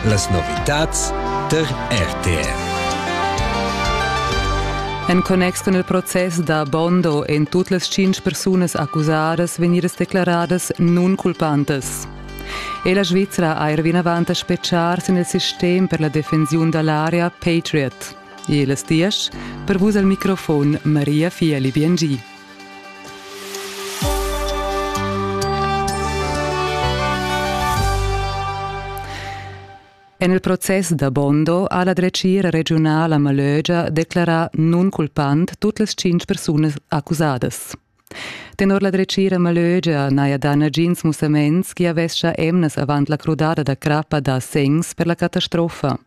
Las novitads tar RTR. En connex cun il process da Bondo èn tut las tschintg persunas accusadas vegnidas declaradas nunculpantas. E la Svizra ha er vinavant a spetgar sin il sistem per la defensiun da l'area Patriot. E las diesch per vus al microfon Maria Fieli Biengi. En il process da Bondo ha la dretgira regiunala Malögia declarà nunculpant tut las tschintg persunas accusadas. Tenor la dretgira Malögia n'haja dà nagins mussaments che avescha emnas avant la crudada da crappa da segns per la catastrofa.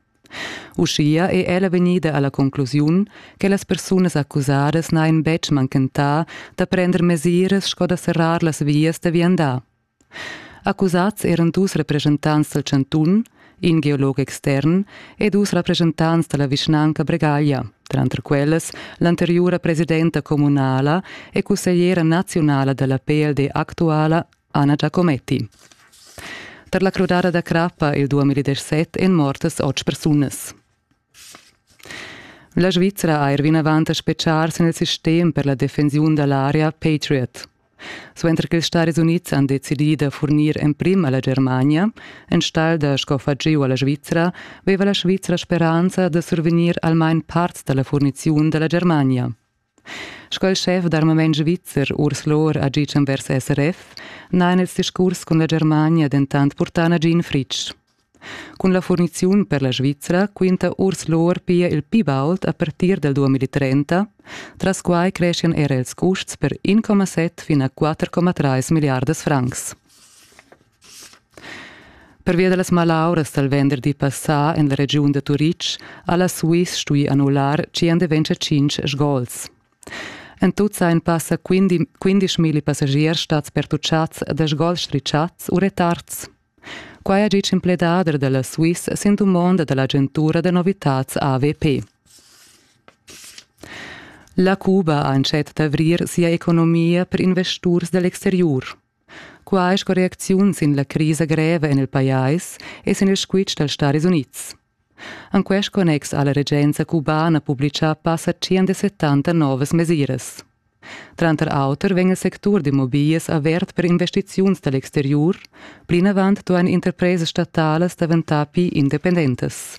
Uschia è ella vegnida a la conclusiun che las persunas accusadas n'hajan betg manchentà da prender mesiras sco da serrar las vias da viandar. Accusads eran dus represchentants dal chantun, in geolog extern e dus rappreschentants da la vischnanca Bregaglia, tranter quellas l'anteriura presidenta communala e cussegliera naziunala da la PLD actuala Anna Giacometti. Per la crudada da crappa il 2017 èn mortas otg persunas. La Svizra ha er vinavant a speciar sin il sistem per la defensiun da l'area Patriot. Suenter che ils Stati Unids han decidì da furnir emprim a la Germania, enstagl da scoffar giu a la Svizra, veva la Svizra speranza da survegnir almain parts da la furniziun da la Germania. Sco il schef d'armament svizzer Urs Lohr ha gitg envers SRF, n'han els discurs cun la Germania dentant purtà nagin fritg. Cun la furniziun per la Svizra quinta Urs Lohr pia il pli baud a partir del 2030, tras quai creschian era ils custs per 1,7 fin a 4,3 milliardas francs. Pervia da las malauras dal venderdi passà en la regiun da Turitg ha la Swiss stuì annullar tschient events a tschintg sgols. En tut sajan passa 15.000 passagiers stads pertutschads da sgols strischads u retards. Quai ha ditg in pledader da la Swiss sin dumonda da l'agentura da novitads AVP. La Cuba ha entschet d'avrir sia economia per investurs da l'exteriur. Quai sco reacziun sin la crisa greva en il pajais e sin il squitsch dals Staris Unids. En quest connex ha la regenza cubana publitgà passa 170 novas mesiras. Tranter auter vegn il sectur d'immobiglias avert per investiziuns da l'exteriur, plinavant duain interpresas statalas daventar pli independentas.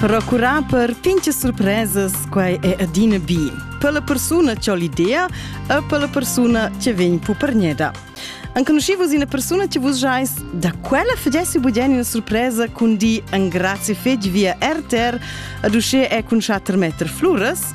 Procurar per pinche surpresas, quai è adina bi. Per la persuna c'ho l'idea e per la persuna che vegn pupergneda. Anconoscivos una persona che vos jais da quella fedessi budien una surpresa con di an grazie fetg via RTR ad usce è cun 4 meter fluras